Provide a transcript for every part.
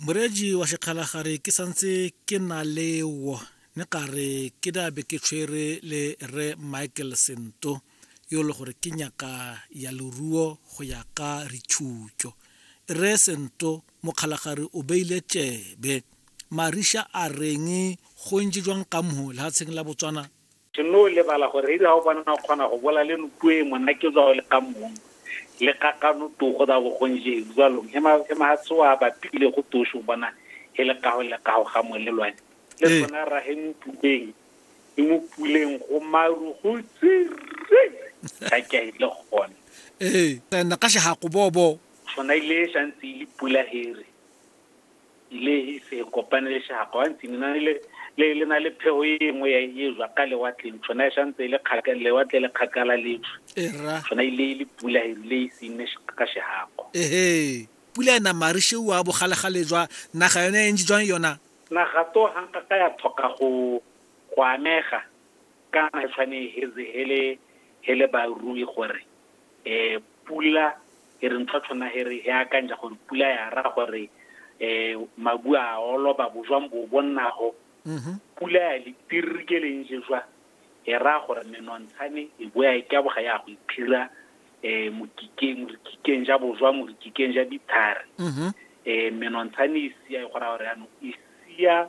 moreetši wa sekgalagare ke santse ke na leo ne ka re ke dabe ke tshwere le re michael sento yo le gore ke nyaka ya leruo go ya ka rithutšo re sento mokgalagare o beile tšebe mariša a reng go ntse jwang ka mo lehatsheng la botswana Seno lebala gore ebe ga o bona o kgona go bola le nopuo e mona ke tswa o le ka mong le kakano togo da bogonje jalo e ma e ma tsoa ba pile go tosho bona e le kago le kago ga mo le lwane le tsona ra he mo puleng e mo puleng go maru go tsire ka ke e le gone ee tsena ka shago bobo sona ile shantsi le pula here le ise e kopane le shagwa wa ntse na le le le na le phego e nngwe ya e jwa ka lewatleng tshwana e santse e le kgakala lewatle le kgakala le tsho era tshwana e le e le pula e le e se ne ka shagwa ehe pula ena marishe wa bogalegale jwa naga yone e ntse jwang yona naga to hanka ka ya thoka go go amega kana e tshwane e heze hele hele ba rui gore eh pula e re ntho tshwana he re e akantša gore pula ya ra gore um mabu a oloba bojwang bo bo nnago mm-hmm. pula ya letirri ke leng jeswa e ra gore menontshane e boya e ka boga ya go iphira um mokikeng morikikeng ja bojwa morikikeng ja dithare um mm-hmm. eh, menontshane e sia e go raya gore yanong e sia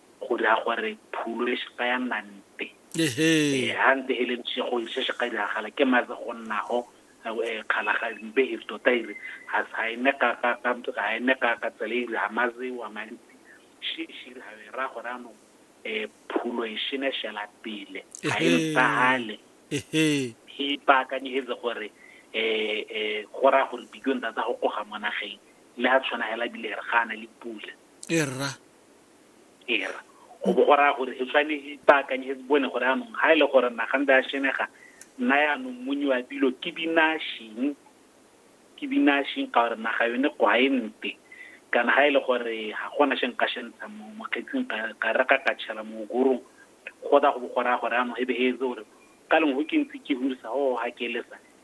go dira gore phulo e seka ya nna mpe eh, ha nte e le ntshego e se se ka diragala ke mabe go nnago eh, kgalaga mpe e tota ire ga e ne ka tsela ire ga mazewa mantsi shishiri ga e ra gore anong um phulo e shene shela pele ga e mpagale e ipaakanyegetse gore um go raya gore bikong tata go koga mo nageng le a tshwana fela bile re ga a na le pula e rra era go bo go raya gore e tshwane ipaakanye e bone gore anong ga e le gore nagantse a shenega nna yaanong monyi wa dilo ke binashing ke binashing ka gore naga yone kwa e mpe kana ga e le gore ga gona sheng ka shentsha mo mokgetsing ka re ka ka tšhela mo gorong go tla go bo go raya gore anong e be e etse gore ka leng go ke ntse ke hurisa go ga ke lesa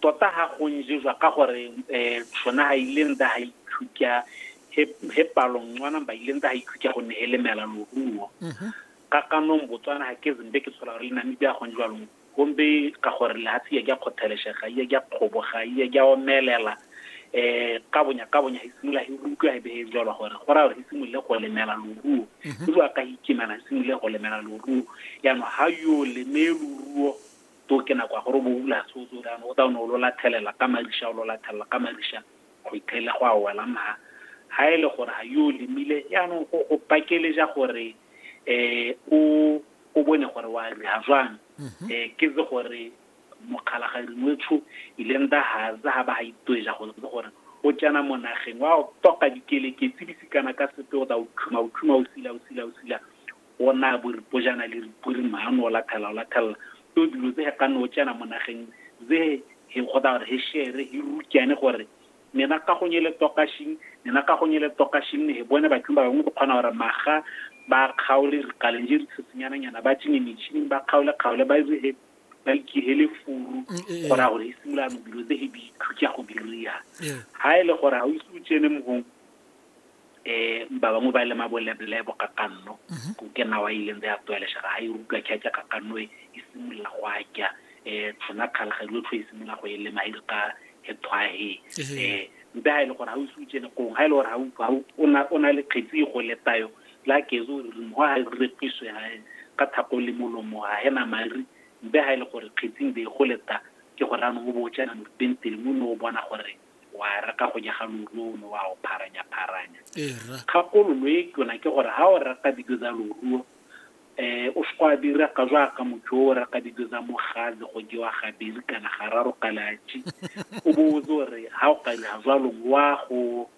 Tota ha go nje jwa ka gore um shona ha ile nta ha ikhukya he, he palong ncwana ba ile nta ha ikhukya go ne he lemela loruo ka kanong botswana ha ke zimbe ke tshola gore le namibia go njwalong gombe ka gore lehatshe ya kya khotheleshega ya kya kgoboga ya kya omelela eh ka bonya ka bonya hisimula hi utlwa hi behe jalo gore go ra gore hisimule go lemela loruo go jwa ka hikimana hisimule go lemela loruo ya no ha yo leme loruo To ke nako ya gore o bo o bula se o tse o re jaanong o tla o ne o lo lathelela ka mariša o lo lathelela ka mariša go itlhele go a wela ma ha e le gore ga yo o lemile jaanong go go pakeleja gore um o o bone gore wa riha jwang um ke tse gore mokgalagadi ngwetsho ileng da ga tsa ga ba ga itweja go tse gore o tsena mo nageng wa o toka dikeleketsi di sikana ka sepe o tla o khuma o khuma o sila o sila o sila o naya boripojana le ripori maano o lathela o lathela to dilo tse he ka no tsena mo nageng ze he kgotsa gore he shere he rukyane gore nena ka go nyele tokashing nena ka go nyele tokashing ne he bone bathong ba bangwe go kgona gore maga ba kgaole rikaleng je ditshetsenyananyana ba tsenye metšhining ba kgaole kgaole ba dire he ba ikihele furu mm, eh, eh. gore gore e simolano dilo tse he di ithutya go diriya ga e le gore ga o ise o tsene mogong um ba bangwe ba le mabolebole bokakanno mhm. ko ke nawa e ileng ya tlwaelesega ga e utlwa kheake kakanno e, e simolola go akya um tsona kgalga dilo tlho e simolola go e lema e re ka ethwahe um eh, mpe ga e le gore ga o se utsene kong ga e le gore o na le kgetsi e go letayo la kezo o rere mogo ga e repiswe gae ka thako le molomo ga ena mari mpe ga e le gore kgetsing be e go leta ke gore anong o bo o tsena moruteng tele mo ne o bona gore wa reka go nyega loru o ne wa o pharanya-pharanya kgakololo e tona ke gore ga o reka dijo tsa loruo um o se go a dira ka jaaka motho o reka dijo tsa mogale go jewa gabedi kana gararo ka latši o botse gore ga o ka dira jwalong wa go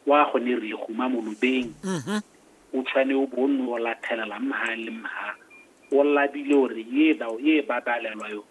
wa go ne re guma molobeng o tshwane o bo o nne o lathelela mha le mha o labile gore ye dao e babalelwa yo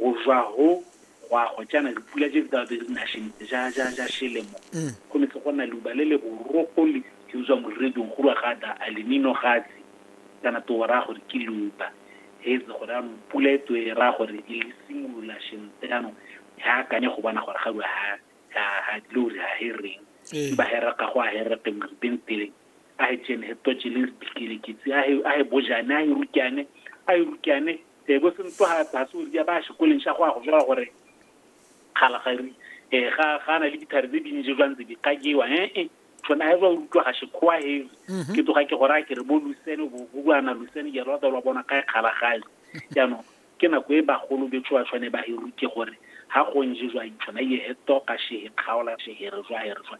go jwa go go a go jaana dipula je di tla be di na šentse ja ja ja šelemo mm. go ne tle go na luba le le borogo le ke utswa moredong go rwa ga da a lenino gatsi kana to ra gore ke luba hetse gore a pula e tswe ra gore e le simolola šentse jaanong ha akanye go bona gore ga rwa ha ha ha dilo re ha hereng ee. ba hera ka go a hereke mo ripeng pele a hi ceni hi toce leri bikeleketsi a hi a hi bojane a hi rukane a hi rukane eh bo sentlo ha ba se ya ba sekoleng sa go a go jwa gore kgala ga ri eh ga ga na le dithare tse dintsi jwa ntse di kajewa eh eh tsona ha ba utlwa ga se khoa he ke tloga ke gore a ke re bo lusene bo bo ana lusene ya rata lwa bona kae kgala gae jaanong ke nako e bagolo betso ba tshwane ba e ruke gore ha go nje jwa itshwana ye he toka she he kgaola she he re jwa he re jwa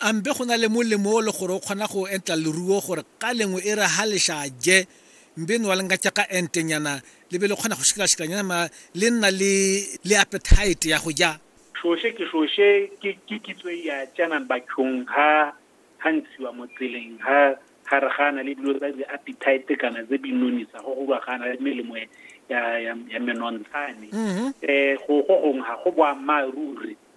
A mbe go na le molemo o le gore o kgona go entla leruo gore ka lengwe e re ha le xa je mbe nwa le ngatša ka entenyana le be le kgona go šikalašikanyana ma le nna le le appetite ya go ja? Xoše ke xoše ke ke kitso e ya tšanan bathong ha ha ntshiwa mo tseleng ha ha re gana le dilo tsa di appetite kana tse di nonisa go go ba gana le melemo ya ya ya menontshane. Eh go go gong ha go boammaaruri.